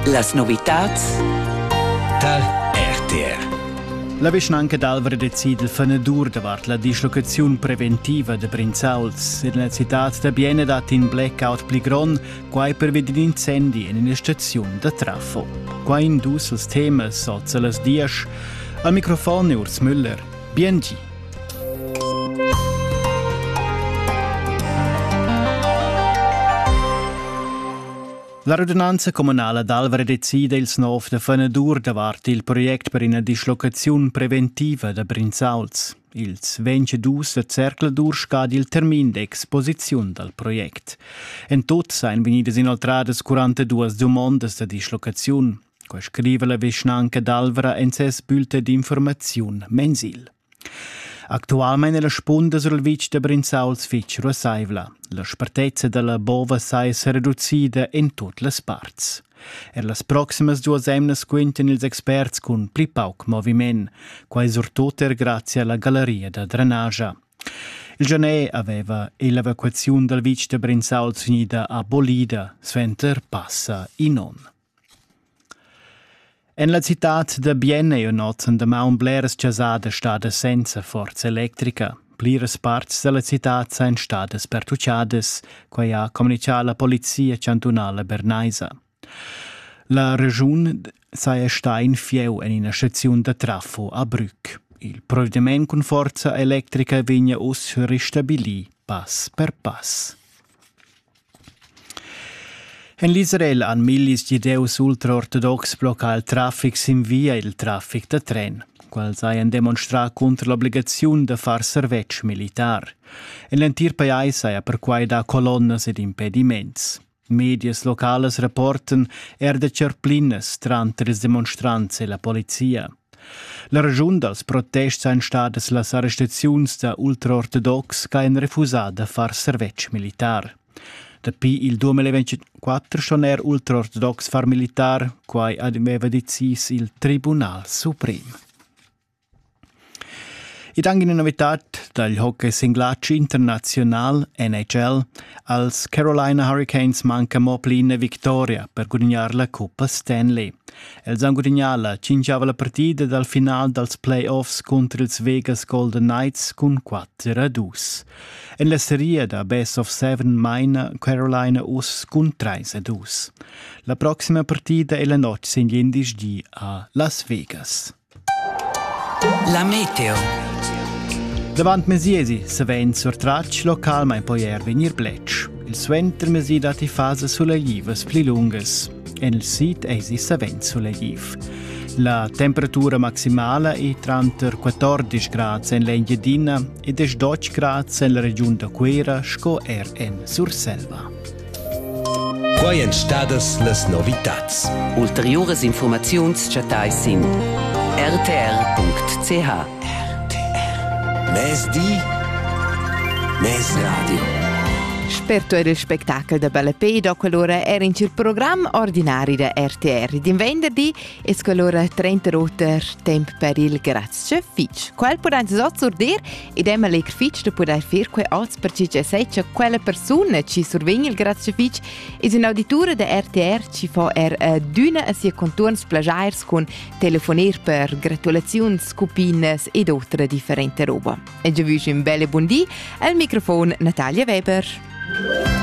Las novitads da RTR La vischnanca d'Alvra decida il fenadur davart la dislocaziun preventiva da Brinzauls. En la citad da Biena dat in blackout pli grond, quai pervi d'in incendi en ina staziun da trafo. Quai in dus als temas sot las diesch. Al microfon è Urs Müller. Biengi. La radunanza communala d'Alvra decida ils nov da fanadur davart il project per ina dislocaziun preventiva da Brinzauls. Ils 22 da Zercladur scadi il termin d'exposiziun dal project. En tot sain vegnidas inoltradas 42 dumondas da dislocaziun. Co scriva la vischnanca d'Alvra en ses bulletin d'informaziun mensil. Actualmein è la spunda sul vitg da Brinzauls fitg ruassaivla. La spartezza dalla bova sai se reducida in tut las parts. Er las proximas duas emnas quintan ils experts cun pli pauc moviment, quai surtut er grazie alla galleria da drenagia. Il Genè aveva l'evacuazione dal vitg da Brinzauls finida abolida, suenter passa in onn. En la citad da Bien ei ün'oz damaun bleras chasadas stadas senza forza electrica. Pliras parts dalla citad san stadas pertuccadas, quei ha communicà la polizia chantunala bernaisa. La regiun saja sta in fieu en ina staziun da trafo a Brück. Il provvediment cun forza electrica vegna uss ristabilii pass per pass. En l'Israel han millis gidieus ultraortodox bloccà il traffic sin via il traffic da tren. Quels hajan demonstrà cunter l'obligaziun da far servetsch militar. En l'entir pajais haja perquai dà colonnas ed impediments. Medias localas rapportan er da cerplinas tranter ils demonstrants e la polizia. La raschun dals protests ein stadas las arrestaziuns da ultraortodox ch'ein refusà da far servetsch militar. Dapi il 2024 schon er ultraortodox far militar, quai aveva decis il Tribunal Suprem. Ed anche una novità dal hockey singlace internazional NHL, als Carolina Hurricanes manca mo pli una vittoria per gudagnare la Coppa Stanley. Els han gudignà la tschintgava partida dal final dals play-offs cunter ils Vegas Golden Knights cun 4 a 2. En la seria da Best of Seven maina Carolina uss cun 3 a 2. La proxima partida è la notg sin glindesdi a Las Vegas. La meteo. Davant mesiesi savend surtratg localmain poi er vegnir bletsch. Il suentermesi datti fase suleglivas pli lungas. En il sid eisi savend sulegliv. La temperatura maximala è tranter 14 grads en l'Engiadina e 12 grads en la regiun da Cuera sco er en Surselva. Quai èn stadas las novitads. Ulteriuras infurmaziuns chattai sin rtr.ch. Mezdi, mez radio. Sperto era il spettacolo da Ballapé, da quell'ora era in il programma ordinari da RTR. Din venderdi es quell'ora 38 temp per il Grazie Fitch. Quel pudan sot sur dir ed è meglier fitg da pudair fir quai oz per chi che sai cha quella persuna chi survegn il grazia fitg es ün'auditura da RTR chi fa er eh, d'üna a sia contuorns plagiairs cun telefonir per gratulaziuns, cupinas ed otra differente roba. E già vüsch ün belle buondì al microfon Natalia Weber.